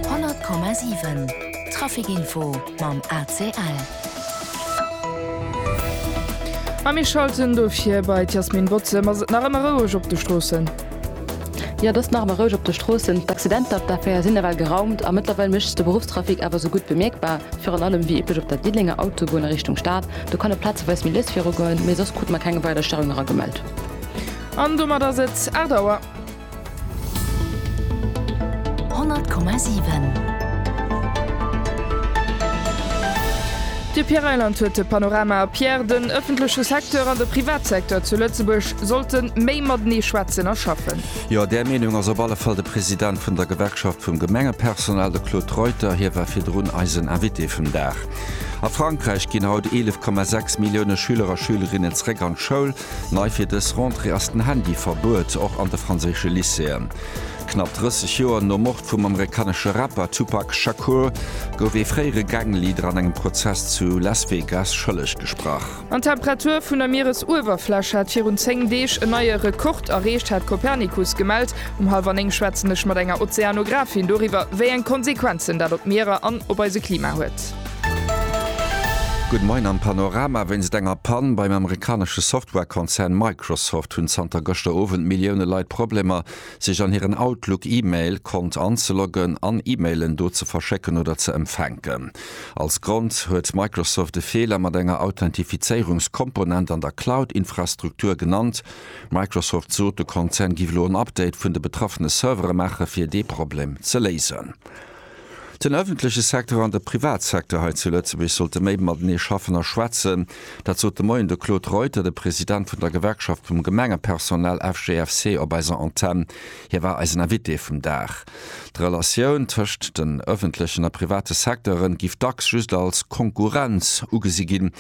100,7 Trafic Info mam ACL. A mir schalten dofir bei d'Jasmine Botzem. Ass et nach ëmmer roueg op de Stroossen? Jo, et ass nach ëmmer roueg op de Stroossen. D'Accidenter op der A4 sinn nawell geraumt a mëttlerweil mécht sech de Beruffstrafic awer esou gutt bemierkbar. Virun allem, wéi üblech, op der Diddelenger Autobunn a Richtung Stad. Do kann et plazeweis méi lues virugoen, mee soss krute mer keng weider Störung eragemellt. An domat ass et 8 Auer. De Pierre Reyland huet de Panorama. Pierre, den ëffentleche Secteur an de Privatsecteur zu Lëtzebuerg sollte méi matenee schwätzen a schaffen. Jo, där Meenung ass op alle Fall de President vun der Gewerkschaft vum Gemengepersonal, de Claude Reuter. Hie war virdrun eisen Invité vum Dag. A Frankräich ginn haut 11,6 Millioune Schüler a Schülerinnen zeréck an d'Schoul. Nei fir dës Rentrée ass den Handy-Verbuet, och an de franséische Lycéeën. Knapp 30 Joer nom Mord vum amerikanesche Rapper Tupac Shakur gouf ee fréiere Gang-Leader an engem Prozess zu Las Vegas schëlleg gesprach. An d'Temperatur vun der Mieresuewerfläch hat virun 10 Deeg en neie Rekord erreecht, hat Copernicus gemellt. Um hallwer 9 schwätzen ech mat enger Ozeanographin doriwwer, wéi eng Konsequenzen dat op d'Mierer an op eise Klima huet. Good Moin am Panorama, Wéinst enger Pann beim amerikanesche Software-Konzern Microsoft hunn zanter gëschter Owend Millioune Leit Problemer, sech an hiren Outlook-E-Mail-Kont anzeloggen an E-Mailen do ze verschécken oder ze empfänken. Als Grond huet Microsoft e Feeler mat enger Authentifizéierungskomponent an der Cloud-Infrastruktur genannt. Microsoft sot, de Konzern giff elo en Update vun de betraffene Servere maachen, fir dee Problem ze léisen. Den ëffentleche Secteur an de Privatsecteur hei zu Lëtzebuerg sollte méi matenee schaffen a schwätzen. Dat sot de Moien de Claude Reuter, de President vun der Gewerkschaft vum Gemengepersonal FGFC, op eiser Antenn. Hie war eisen Invité vum Dag. D'Relatioun tëscht den ëffentlechen a private Secteure giff dacks just als Konkurrenz ugesi ginn.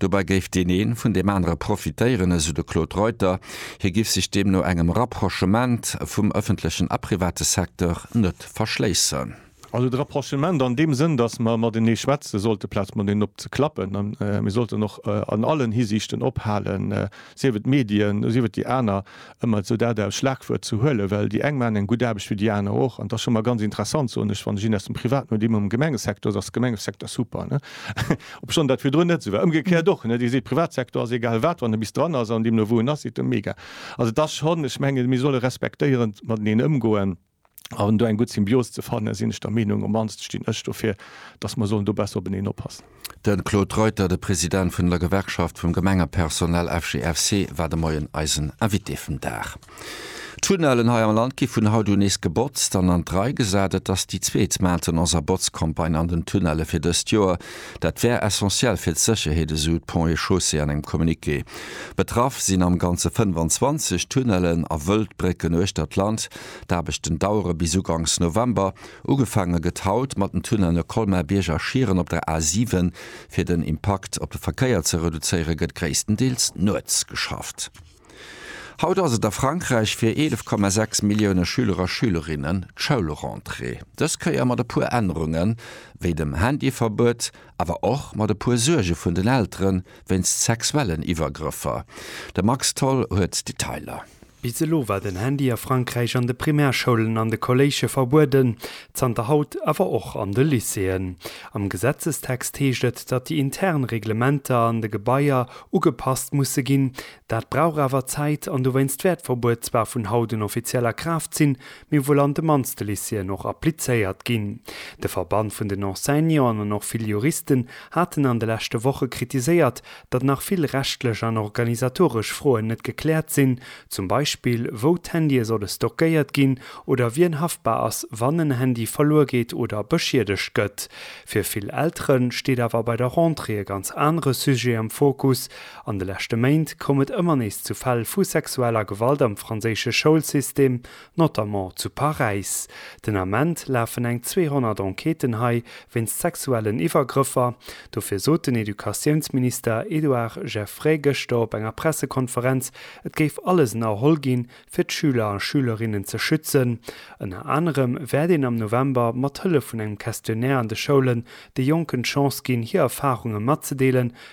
Dobäi géif deen een vun deem anere profitéieren, esou de Claude Reuter. Hie giff sech deemno engem Rapprochement vum ëffentlechen a private Secteur net verschléissen. Also de Rapprochement an deem Sënn, datt mer matenee schwätze sollt aplaz mateneen op ze klappen. A mir sollten och an allen Hisiichten ophalen, sief et d'Medien, sief et déi aner, ëmmer esou dat als Schlagwuert ze huelen, well déi eng maachen eng gutt Aarbecht wéi déi aner och. An et ass scho mol ganz interessant, soen ech, wann ech een aus dem Privaten huet, immem am Gemengesecteur, da ass de Gemengesecteur super, ne? obschonn dat virdrun net esou war. Ëmgekéiert och, ne? Dir seet, Privatsecteur ass egal wat, wann e bis dran ass an deemno wou en ass, seet e mega. Also et ass schonn, ech mengen, mir solle respektéierend mateneen ëmgoen. A do eng gutt Symbios ze fannen, sinn ech der Meenung, um mannste stinn ech dofir, datt mer sollen do besser openeen oppassen. De Claude Reuter, de President vun der Gewerkschaft vum Gemengepersonal FGFC, war de Moien eisen Invité vum Dag. D'Tunnellen hei am Land gi vun haut un nees gebotzt an an d'Rei gesat. Et ass déi zweet Maintenance a Botzcampagne an den Tunnelle fir dëst Joer. Dat wär essentiell fir d'Sécherheet, esou d'Ponts et Chaussées an engem Communiqué. Betraff sinn am Ganze 25 Tunnellen a Wëldbrécken uechter d'Land. D'Aarbechten dauere bis ugangs November. Ugefaange gëtt haut mat den Tunnelle Colmar-Bierg a Schieren op der A 7. Fir den Impakt op de Verkéier ze reduzéiere gëtt gréisstendeels nuets geschafft. Haut ass et a Frankräich fir 11,6 Millioune Schüler a Schülerinnen d'Schoulrentrée. Dës Kéier mat e puer Ännerungen, wéi dem Handyverbuet awer och mat e puer Suerge vun den Eltere wéinst sexuellen Iwwergrëffer. De Max Tholl huet d'Detailer. Bis elo war den Handy a Frankräich an de Primärschoulen an de Kolléische verbueden, zanter haut awer och an de Lycéeën. Am Gesetzestext heescht et, datt déi intern Reglementer an de Gebaier ugepasst musse ginn. Dat brauch awer Zäit an dowéinst wäert d'Verbuet zwar vun haut un offiziell a Kraaft sinn, Mir wuel an de mannste Lycéeën och applizéiert ginn. De Verband vun den Enseignanten an och vill Juristen haten an de leschte Woche kritiséiert, datt nach vill rechtlech an organisatoresch Froen net gekläert sinn, zum Beispill wou d'Handye solle stockéiert ginn oder wien haftbar ass, wann en Handy verluer geet oder beschiedegt gëtt. Fir vill Eltere steet awer bei der Rentrée e ganz anere Sujet am Fokus. An de leschte Méint koum et ëmmer nees zu Fäll vu sexueller Gewalt am franséische Schoulsystem. notamment zu Paräis. Den Ament lafen eng 200 Enquêten hei wéinst sexuellen Iwwergrëffer. Dofir sot den Educatiounsminister Edouard Geffray gëschter op enger Pressekonferenz, et géif alles ënnerholl ginn, fir d'Schüler a Schülerinnen ze schützen. Ënner anerem wäert een am November mat Hëllef vun engem Questionnaire an de Schoulen de Jonken d'Chance ginn, hir Erfarunge matzedeelen,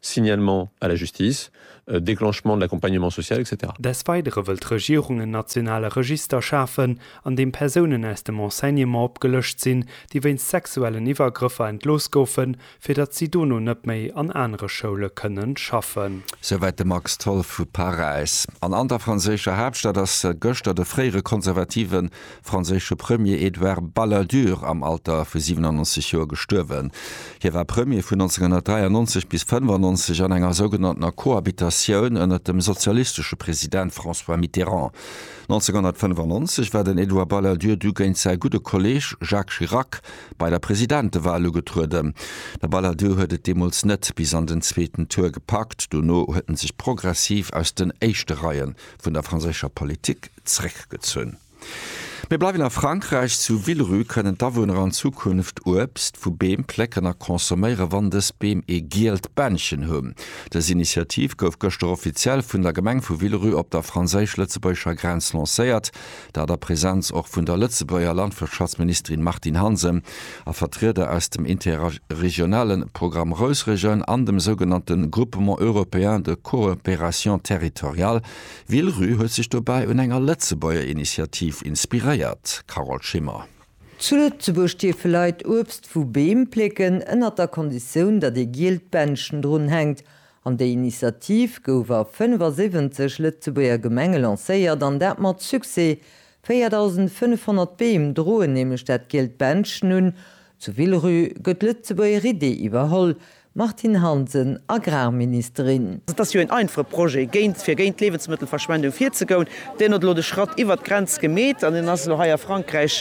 Signalement à la justice, déclenchement de l'accompagnement social, etc. Des Weidere wëll d'Regierung en nationale Register schafen, an deem Persounen aus dem Enseignement opgelëscht sinn, déi wéinst sexuellen Iwwergrëffer entlooss goufen, fir datt si dono net méi an anere Schoule kënnen schaffen. Souwäit de Max Tholl vu Paräis. An an der franséischer Haaptstad ass gëschter de fréiere konservative franséische Premier Edouard Balladur am Alter vu 97 Joer gestuerwen. Hie war Premier vun 1993 bis 95 an enger sougenanntener Cohabitatioun ënnert dem sozialistesche President François Mitterrand. 1995 war den Edouard Balladur du géint säi gudde Kolleeg Jacques Chirac bei der Presidentewal ugetrueden. De Balladur huet et deemools net bis an den zweeten Tour gepackt, dono huet en sech progressiv aus den éischte Reien vun der franséischer Politik zeréckgezunn. Mir bleiwen a Frankräich, Zu Villerupt kënnen d'Awunner an Zukunft Uebst vu Beem plécken a consomméieren, wann dës Beem ee gielt Bännchen hunn. Dës Initiativ gouf gëschter offiziell vun der Gemeng vu Villerupt op der franséisch-lëtzebuergescher Grenz lancéiert, dat a Präsenz och vun der Lëtzebuerger Landwirtschaftsministerin Martine Hansen a Vertrieder aus dem interregionale Programme Rousregion an dem sougenannte Groupement européen de coopération territoriale, Villerupt huet sech dobäi un enger Lëtzebuerger Initiativ inspiréiert, Carole Schimmer. Zu Lëtzebuerg dierfe Leit Uebst vu Beem plécken, ënnert der Konditioun, datt ee gielt Bändchen drun hänkt. An déi Initiativ gouf a 75 Lëtzebuerger Gemenge lancéiert, an dat mat Succès. 4.500 Beem droen nämlech dat gielt Bändchen un. Zu Villerupt gëtt d'Lëtzebuerger Idee iwwerholl, Martine Hansen, Agrarministerin. Et ass jo een einfache Projet, géint, fir géint d'Liewensmëttelverschwendung virzegoun. Deen huet elo de Schratt iwwert d'Grenz gemeet an deen ass elo hei a Frankräich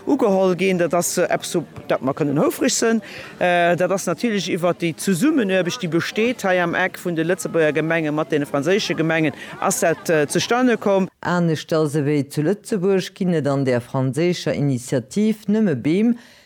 ugeholl ginn. Dat ass eppes, op dat mer kënnen houfreg sënn. Dat ass natierlech iwwert déi Zesummenuarbecht, déi besteet hei am Eck vun de Lëtzebuerger Gemenge mat deene franséische Gemengen, ass dat zustane komm. Aneschters ewéi zu Lëtzebuerg ginn et an där franséischer Initiativ nëmme Beem,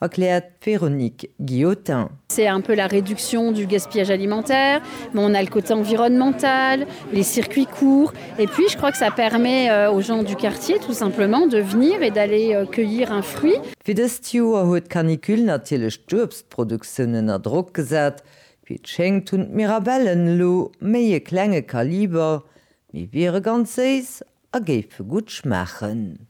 erkläert d'Véronique Guillotin. C'est un peu la réduction du gaspillage alimentaire, mais on a le côté environnemental, les circuits courts et puis je crois que ça permet aux gens du quartier tout simplement de venir et d'aller cueillir un fruit. Wéi dëst Joer huet d'Canicule natierlech d'Uebstproduktioun ënner Drock gesat. Wéi et schéngt hunn d'Mirabellen elo méi e klenge Kaliber, mee wiere ganz séiss A géife gutt schmaachen.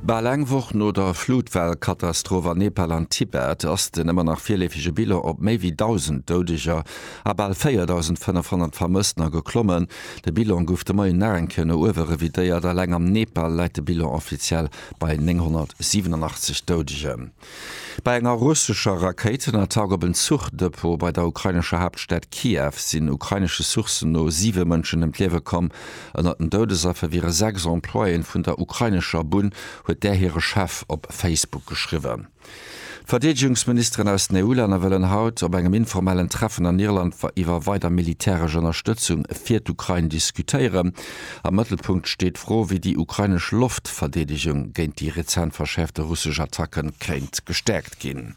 Bal eng Woch no der Flutwell-Katastroph an Nepal an Tibet ass den ëmmer nach virleefege Bilan op méi wéi 1.000 Doudeger a bal 4.500 Vermëssten a geklommen. De Bilan gouf de Moien nach eng Kéier no uewe revidéiert, eleng am Nepal läit de Bilan offiziell bei 987 Doudegen. Bei enger russescher Rakéitenattack op en Zuchdepot bei der ukrainescher Haaptstad Kiew sinn ukrainesche Sourcen no siwe Mënschen ëm d'Liewe komm. Ënnert den Doudesaffer wiere sechs Employéen vun der ukrainescher Bunn, huet där hire Chef op Facebook geschriwwen. D'Verdeedegungsministeren aus den EU-Länner wëllen haut op engem informellen Treffen an Irland iwwer weider militäresch Ënnerstëtzung fir d'Ukrain diskutéieren. Am Mëttelpunkt steet d'Fro, wéi déi ukrainesch Loftverdeedegung géint déi rezent verschäerfte russesch Attacke kéint gestäerkt ginn.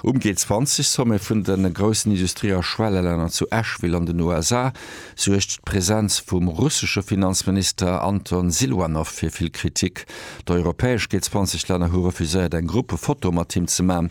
Um G20-Sommet vun de groussen Industrie a Schwellelänner zu Ashville an den USA suergt d'Presenz vum russesche Finanzminister Anton Siluanow fir vill Kritik. D'europäesch G20-Länner hu refuséiert, eng Gruppefoto mat him ze man,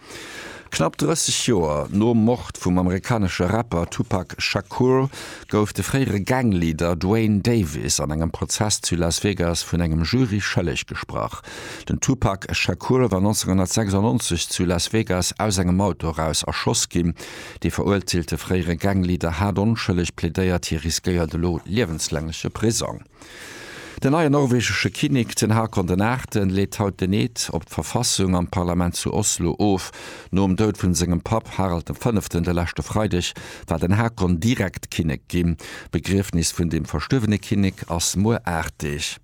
Knapp 30 Joer nom Mord vum amerikanesche Rapper Tupac Shakur gouf de fréiere Gang-Leader Duane Davis an engem Prozess zu Las Vegas vun engem Jury schëlleg gesprach. Den Tupac Shakur war 1996 zu Las Vegas aus engem Auto eraus erschoss ginn. Dee veruerteelte fréiere Gang-Leader hat onschëlleg plädéiert, hie riskéiert elo liewenslängleche Prisong. Den neien norwegesche Kinnek, den Haakon den Aachten, leet haut den Eed op d'Verfassung am Parlament zu Oslo of. Nom Doud vun sengem Papp Harald dem Fënneften de leschte Freideg war den Haakon direkt Kinnek ginn. D'Begriefnis vun dem verstuerwene Kinnek ass muer 8 Deeg.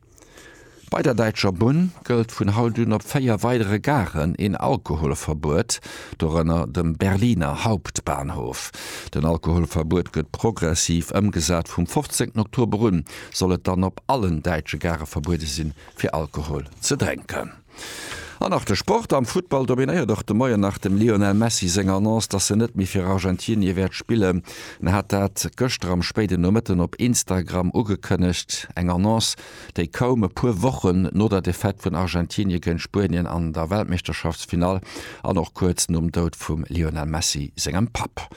Bei der Däitscher Bunn gëllt vun haut un op 4 weidere Garen een Alkoholverbuet. dorënner dem Berliner Hauptbahnhof. Den Alkoholverbuet gëtt progressiv ëmgesat, vum 15 Oktober un soll et dann op allen däitsche Gare verbuede sinn, fir Alkohol ze drénken. An nach de Sport, Am Futtball dominéiert och de Moien nach dem Lionel Messi seng Annonce, datt en net méi fir Argentinie wäert spillen. En hat dat gëschter am spéiden Nomëtten op Instagram ugekënnegt, eng Annonce, déi kaum e puer Wochen no der Defaite vun Argentinie géint Spuenien an der Weltmeeschterschaftsfinall an och kuerz nom Doud vum Lionel Messi sengem Papp.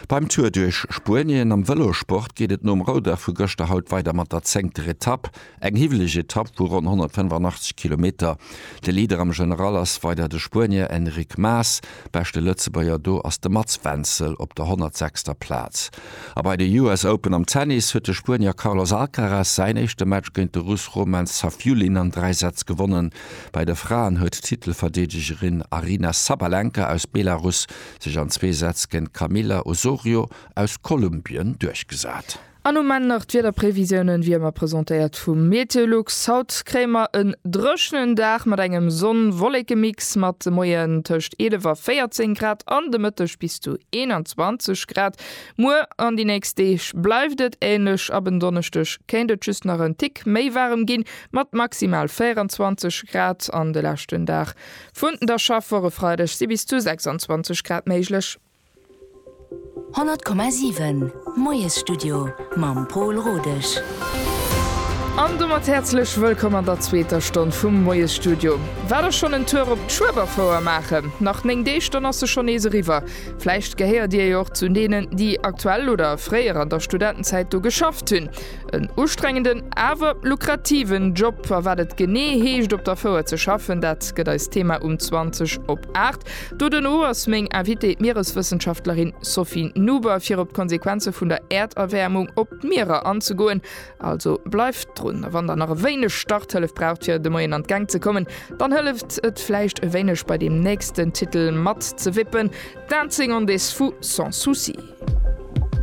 Beim Tour duerch Spuenien am Vëlossport geet et nom Roudach vu gëschter haut weider mat der zéngter Etapp. Eng hiwweleg Etapp vu ronn 185 Kilometer. De Leader am General ass weider de Spuenier Enric Mas. Beschte Lëtzebuerger do ass de Mats Wenzel op der 106. Plaz. A bei de US Open am Tennis huet de Spuenier Carlos Alcaraz säin éischte Match géint de Russ Roman Safiullin an dräi Sätz gewonnen. Bei de Fraen huet d'Titelverdeedegerin Aryna Sabalenka aus Belarus sech an zwee Sätz géint d'Camila Osorio aus Kolumbien duerchgesat. An um Enn nach d'Wiederprevisiounen, wéi ëmmer presentéiert vum Meteolux. Haut kréie mer en dréchnen Dag mat engem Sonn-Wollekemix mat de Moien tëscht 11 a 14 Grad an de Mëtteg bis zu 21 Grad. Muer an déi nächst Deeg bleift et änlech, ab en Donneschdeg kéint et just nach en Tick méi waarem ginn, mat maximal 24 Grad an de leschten Dag vun der Schaffwoch. E Freideg si bis zu 26 Grad méiglech. 100,7 Moiesstudio mam Pol Rodesch. An domat häerzlech wëllkomm an der zweeter Stonn vum Moiesstudio. War der schonn en Tour op d'Schueberfouer maachen? Nach 9 Deeg, dann ass se schonn nees eriwwer. Vläicht gehéiert Dir jo och zu deenen, déi aktuell oder fréier an der Studentenzäit do geschafft hunn. En ustrengenden, awer lukrativen Job. A wat et genee heescht op der Fouer ze schaffen, dat gëtt eist Thema um 20 op 8. Doduerno ass meng Invitée d'Miereswëssenschaftlerin Sophie Nuber fir op d'Konsequenze vun der Äerderwäermung op d'Mierer anzegoen. Also bleift drun a wann der nach e wéineg Starthëllef braucht fir de Moien an d'Gäng ze kommen, dann hëlleft et vläicht e wéineg bei deem nächsten Titel matzewippen, Dancing on this Fou sans souci.